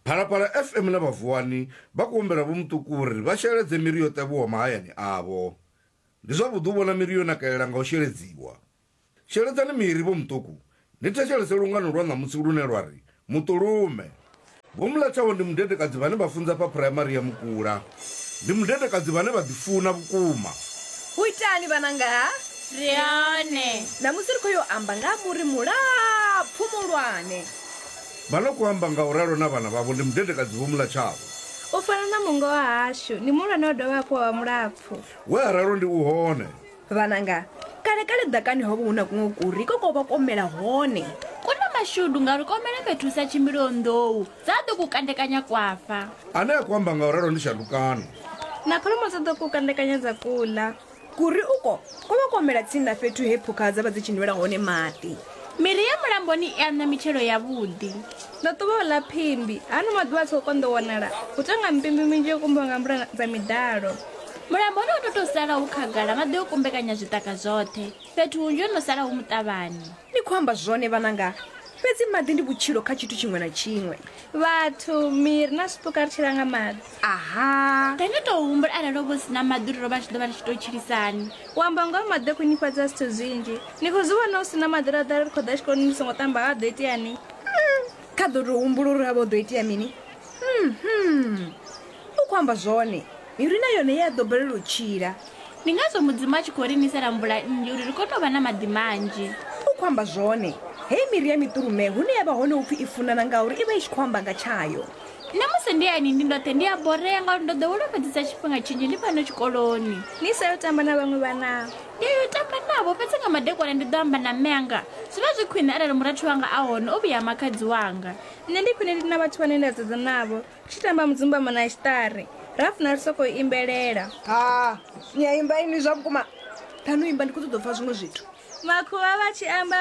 phalaphala fm na vhavuwani vha khou humbela vho muṱuku uri vha sheledze miri yo ṱavhiwa mahayani avho ndi zwavhuḓi u vhona miri yo nakelela nga u sheledziwa sheledzani miri vho muṱuku ni thetshelese lungano lwa ṋamusi lune lwa ri muṱulume vho mulatshaho ndi mudedekadzi vhane vha funza fha phuraimari ya mukula Ndi mudedekadzi vhane vha ḓifuna vhukuma. U itani vhananga? Ri hone. Ṋamusi ri khou yo amba nga ha muri mulapfu muhulwane. Vha no khou amba nga u ralo na vhana vhavho, ndi mudedekadzi Vho Mulatshavho. U fana na mungo wahashu, ndi muhulwane wa dovha hafhu wa vha mulapfu. We a ralo ndi u hone. Vhananga, kale-kale ḓakani ho vha hu na kuṅwe kuri ko ko vha ko mela hone. Ku na mashudu ngauri ko mela fhethu hu sa tshimbiliho nḓou, dza ḓo ku kandekanya kwa fa. Ane a ku amba nga u ralo ndi Shandukano. Na kholomo dza ḓo ku kandekanya dza ku ḽa. Kuri uko ko vha ko mela tsini na fhethu he phukha dza vha dzi tshi nwela hone maḓi. Miri ya mulamboni i aṋa mitshelo yavhuḓi. Ndo ṱuvha u ḽa phimbi. Hano maḓuvha a tshi khou konḓa u wanala, hu tou nga mpimbi minzhi yo kumbiwa nga mvula dza miḓalo. Mulamboni ho no tou sala hu khagala, maḓi o kumbekanya zwiṱaka zwoṱhe. Fhethu hunzhi ho no sala hu muṱavhani. Ni khou amba zwone vhananga, fhedzi maḓi ndi vhutshilo kha tshithu tshiṅwe na tshiṅwe. vhathu miri na zwipuka ri tshila nga maḓi aha ri ni tou humbula arali o vho si na maḓi uri ro vha tshi ḓo vha ri tshi tou tshilisani u amba ngoho maḓi o khwinifhadza zwithu zwinzhi ni khou zwi vhona u si na maḓi ra ḓa ri khou ḓa tshikoloni ni songo ṱamba ha ḓo iteani hmm, kha ḓo tou humbula uri ha vha u ḓo itea mini hmm, hmm. U khou amba zwone. Miri na yone i a ḓo balelwa u tshila. Ndi ngazwo Mudzimu a tshi khou ri nisela mvula nnzhi uri ri kone u vha na maḓi manzhi. U khou amba zwone. Hei miri ya miṱulume, hune ya vha hone hu pfi i funana ngauri i vha i tshi khou amba nga tshayo. Nṋe musi ndi hayani ndi ndoṱhe ndi a borea ngauri ndo ḓowela u fhedzisa tshifhinga tshinzhi ndi fhano tshikoloni. Ni sa yo tamba na vhaṅwe vhana? Ndi a yo tamba navho, fhedzi nga madekwana ndi ḓo amba na mme anga. Zwi vha zwi khwine arali murathu wanga a hone, o vhuya ha makhadzi wanga. Nṋe ndi khwine ndi na vhathu vhane nda sedzana navho. tshi tamba mudzumbamo na tshiṱari ra funa ri sokou imbelela ha ni a imba inwi zwa vhukuma ṱhanu imba ndi khou ṱoḓa u pfa zwiṅwe zwithu makhuvha vha tshi amba